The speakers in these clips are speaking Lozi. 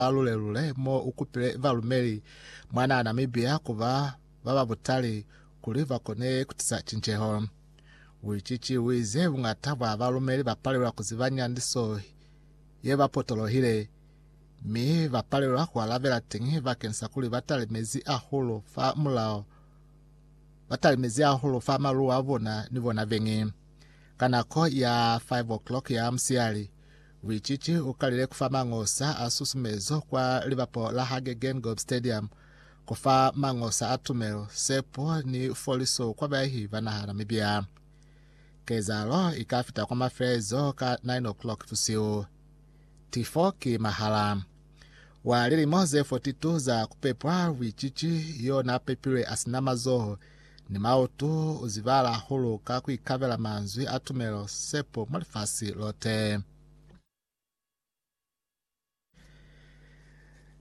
ba lule-lule mo u kupile balumeli mwanaa Namibia ku ba ba ba butali kuli ba kone ku tisa cinceho. Wicici u ize buñata bwa balumeli ba palelwa ku ziba nyandiso ye ba potolohile, mi ba palelwa ku alabela teñi bakeng sa kuli ba tale mezi ahulu fa mulao, ba tale mezi ahulu fa maluwa a bona ni bona beñi ka nako ya 5 o'clock ya musiyali. Luicici u kalile ku fa mangosa a susumezo kwa libapo la hage Geingob Stadium, ku fa mangosa a tumelo, sepo ni foliso kwa bayahi ba naha Namibia. Kezahalo i ka fita kwa mafelezo ka 9:00 busihu. Tifo ki mahala. Wa lilimo ze 42 za ku pepwa luicici yo na pepilwe a si na mazoho Ni mautu u zibahala hahulu ka ku ikabela manzwi a tumelo, sepo mwa lifasi lote.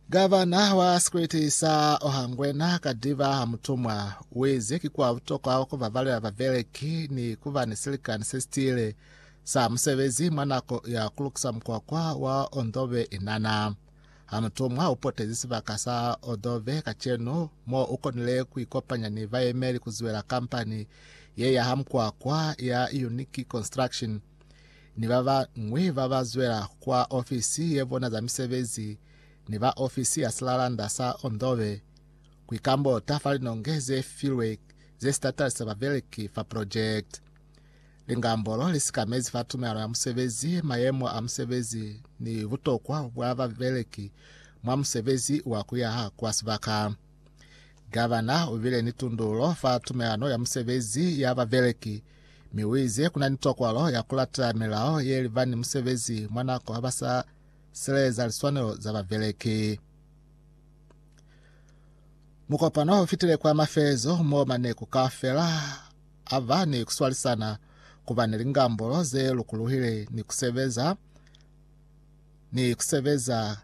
Gavana wa sikwiti sa Ohangwena Kadiba Hamutumwa uize ki kwa butokwa ku babalela babeleki ni kuba ni silikani sesitile sa musebezi mwa nako ya kulukisa mukwakwa wa Ondobe Inana. Ha mutumwa ha u potezi sibaka sa Odove kacenu mo u konile ku ikopanya ni bayemeli ku zwela kampani ye ya ha mukwakwa ya Unique Construction ni ba bañwi ba ba zwela kwa ofisi ye bona za misebezi ni ba ofisi ya silalanda sa Ondove ku ikambota fa linonge ze filwe ze si tatalisa babeleki fa project. Lingambolo li sikamezi fa tumelano ya musebezi, mayemo a musebezi ni butokwa bwa babeleki mwa musebezi wa kuyaha kwa sibaka. Gavana u bile ni tundulo fa tumelano ya musebezi ya babeleki mi u ize kuna ni tokwalo ya kulatela milao ye liba ni musebezi mwa nako ha ba sa sileleza liswanelo za babeleki. Mukopano u fitile kwa mafelezo moo maneku kaufela a ba ni kuswalisana, ku ba ni lingambolo ze lukuluhile ni ku sebeza ni ku sebeza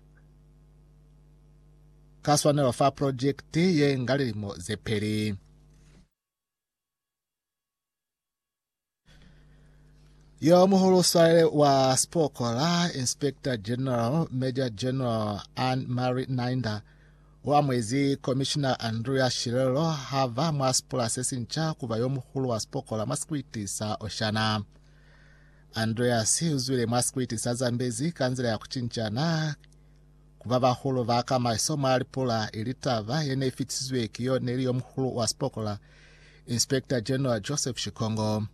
ka swanelo fa projekiti ye nga lilimo ze peli. Yo muhulu swalele wa sipoko la Inspector General Major General Ann Marie Nainda U amuezi Komishina Andrea Shirelo ha va mwa sipula se sinca ku ba yo muhulu wa sipokola mwa sikwiti sa Oshana. Andreas u zwile mwa sikwiti sa Zambezi ka nzila ya ku cincana ku ba bahulu ba ka maeso mwa lipula, ili taba ye ne i fitisizwe ki yo ne li yo muhulu wa sipokola, Inspector General Joseph Shikongo.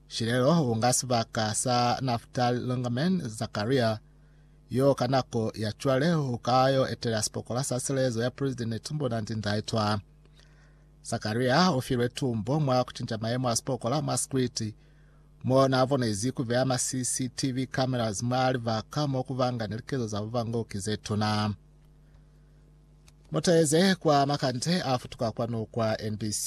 Shirelo u nga sibaka sa Naftali Longaman Zakaria Yo ka nako ya cwale u ka yo etela sipokola sa silezo ya Presidente tumbo na ndinda ye twa. Zakaria u filwe tumbo mwa ku cinca mayemo a sipokola mwa sikwiti, mo na bonezi ku beya ma CCTV cameras mwa libaka mo ku banga ni likezo za bubangoki ze tuna. Muteze kwa makande a futuka kwanu kwa NBC.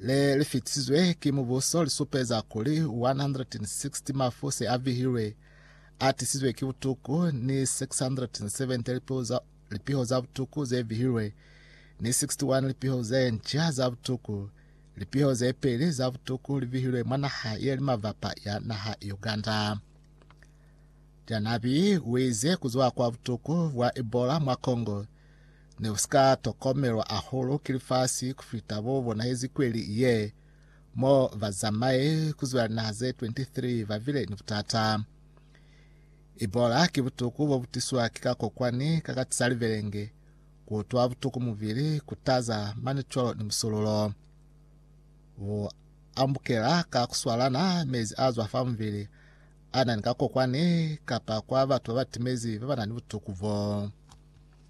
le li fitisizwe ki mubuso li supeza kuli 160 mafu se a vihilwe a tisizwe ki butuku ni 670 lipiho za, lipiho za butuku ze vihilwe ni 61 lipiho ze nca za butuku. Lipiho ze peli za butuku li vihilwe mwa naha ye li mavapa ya naha Uganda. Janabi wize kuzwa kwa butuku bwa Ebola mwa Congo ne u si ka tokomelwa ahulu ki lifasi ku fita bo bonahezi kweli ye, mo bazamai ku zwa linaha ze 23 ba bile ni butata. Ebola ki butuku bo bu tiswa ki kakokwani ka ka tisa libelenge, ku utwa butuku mubili, ku taza mani cwalo ni musululo. Bu ambukela ka ku swalana mezi a zwa fa mubili a na ni kakokwani kapa kwa batu ba ba timezi ba ba na ni butuku bo.